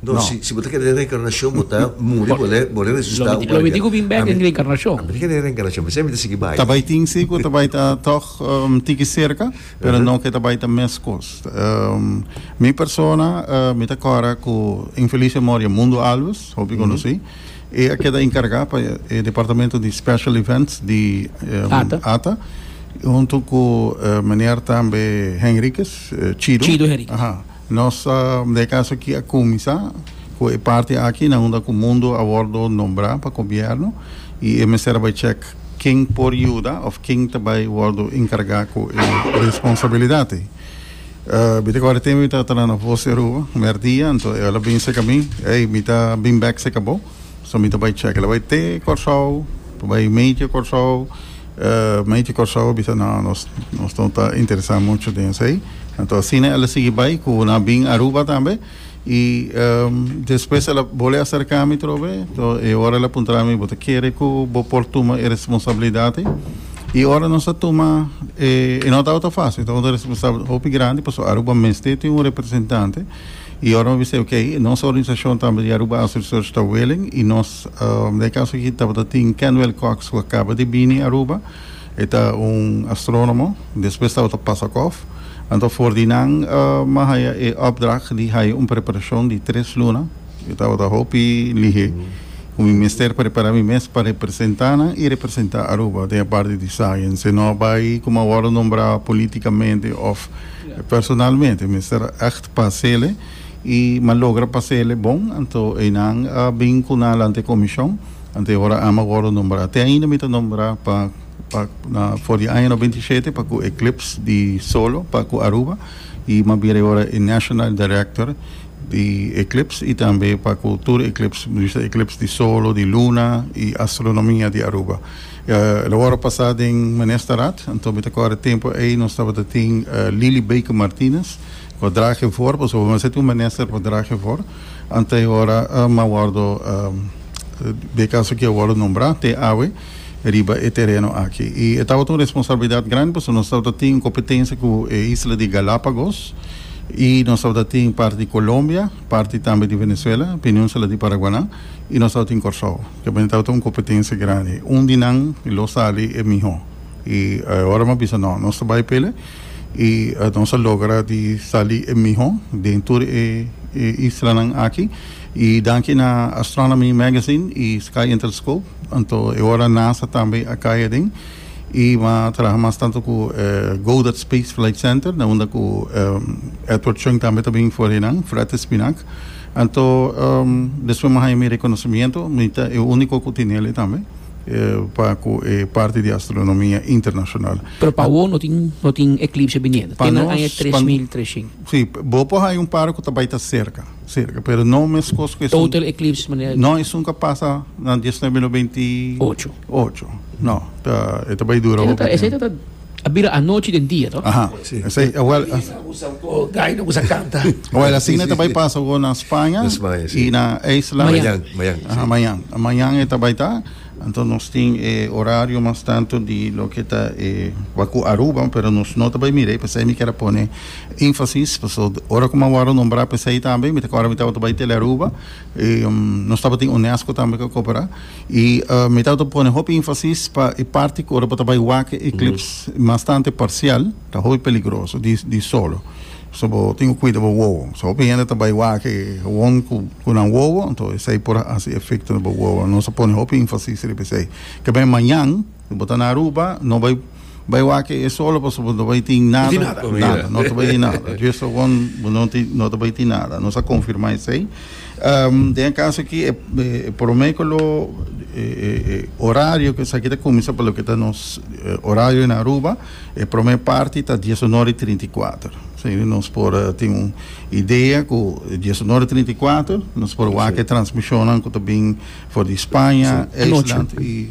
No, No. si, si bo ta kere den reencarnacion, bo ta muri, bo le, bo le resucita Lo mi, lo mi di ku bin bek den reencarnacion. A mi ta kere den reencarnacion, p'esei mi ta sigui bai. Ta bai tin si ku ta bai ta tòg um tiki serka, pero no ku e ta bai ta mes kos. Um, mi persona, uh, mi ta kòrda ku infelisio Moria Mundo Alves, hopi konosí. E a keda enkargá pa e departamento di Special Events di um, Ata. Ata, huntu ku eh, meneer tambe Henriquez, eh, Chido. Chido Henriquez. Aha. Nos ta de caso aki a cuminsa cu e parti aki na unda cu mundo a wordo nombra pa gobierno y e mester a bay check ken por yuda of ken ta bay wordo encarga cu e responsabilidad ey. Mi ta corda tempo mi ta tala na Voz di Aruba mer dia anto el a bin seca mi, ey mi ta bin bek seca bo, so mi ta bay check el a bay te Corsou, ta bay medio Corsou. Mente Kòrsou a bisa, No, nos no ta interesá muchu den esei. Anto asina el a sigui bai ku nan bin Aruba tambe. I despues el a bolé aserká mi otro be. Tò, e ora el a puntra mi, Bo ta kere ku bo por tuma e responsabilidat ei? I ora nos a tuma, i no tabata fásil, tabata un responsabilidat hopi grandi, pasobra Aruba mester tin un representante. I ora mi a bis'é, Oké, nos organisashon tambe di Aruba Asociacion Stad Welen, i nos. Den e kaso aki tabata tin Kenwell Cox ku a kaba di bini Aruba, e ta un astrónomo, despues tabata Pasakoff. Anto for di nan a haya e opdracht di haya un preparashon di tres luna, mi tabata hopi lihé ku mi mester prepará mi mes pa representá nan i representá Aruba den e parti di science, si no bai kuma a wòrdu nombrá polítikamente òf personalmente. Mester ègt pasele. y m'a logra pasa el'e bon, anto eynan a bin cu nan alante e comision, anto e hora a'ma wordo nombra. Te ainda mi ta nombra pa pa na for di aña no binti shete pa cu Eclipse di Solo pa cu Aruba y m'a bira e hora e National Director di Eclipse y tambe pa cu tur Eclipse, mi bisa Eclipse di Solo, di Luna y Astronomia di Aruba. Lo wordo pasa den Ministerraad, anto mi ta core tempo ey nos tabata tin Lily Baker Martinez, Por dra ke for, pasobra bo mester tin un minister por dra ke for, anta e ora m'a wòrdu be kaso ke a wòrdu nombrá te awe riba e tereno aki. I e tabata un responsabilidat grandi pasobra nos tabata tin kompetensia ku e isla di Galápagos i nos tabata tin parti di Kolombia, parti tambe di Venezuela, Peninsula di Paraguanan i nos tabata tin Kòrsou. Kepende tabata un kompetensia grandi. Un di nan lo sali e mihó. I e ora m'a bisa, No, nos ta bai pele. y nos a logra di sali e miho den tur e islanan aki y danki na Astronomy Magazine y Sky and Telescope anto e ora NASA tambe a kai aden y bo a traha mas tanto cu Goddard Space Flight Center na unda cu Edward Chung tambe ta bin for enan Fred Espinac anto despues mi a haya mi reconocimiento mi ta e unico cu tinele tambe. pa ku e parti di astronomia internashonal. Pero pa awor no tin no tin eklipse biniendo te na aña tres mil treshen. Si, bo por haya un par ku ta bai ta serka, serka, pero no meskos ku esun. Total eclipse manera. No, esun ka pasa na diesnuebe mil no beinti. Ocho. Ocho, no, ta e ta bai dura hopi tempu. Esei ta ta. A bira anochi den dia, to? Aha, esei, awel, Bai na usa un po gai na usa canta. awel asina ta bai pasa awor na Spaña Na Spaña, si. i na Isla. Mayan. Mayan, mayan, Aha, si. mayan. Mayan e ta bai ta. Anto nos tin e orario mas tanto di loke ta e wak ku Aruba, pero nos no ta bai mira ei, p'esei mi kier a pone enfasis, paso ora ku mi a wòrdu a nombrá p'esei tambe, mi ta kòrda mi tabata bai Tele Aruba, i nos tabatin UNESCO tambe ku a koperá. I mi ta pone hopi enfasis pa e parti ku ora bo ta bai wak e eklips bastante parsial ta hopi peligroso di solo so bo tin ku kuida bo wowo so hopi hende ta bai wak won ku nan wowo esei por hasi efekto na bo wowo nos a pone hopi enfasis riba esei kibè mañan Si bo ta na Aruba, no bai bai wak e solo pasobra bo no ta bai tin nada, nada, no ta bai tin nada. Just awor bo no tin, no ta bai tin nada. Nos a confirma esey. Den e caso aki e prome cu lo e horario cu esaki ta cuminsa pa loke ta nos horario na Aruba, e prome parti ta dies un ora y trinta y cuater. Esey nos por tin un idea cu dies un ora y trinta y cuater nos por wak e transmisionnan cu ta bin for di Spanje, Eislandi y.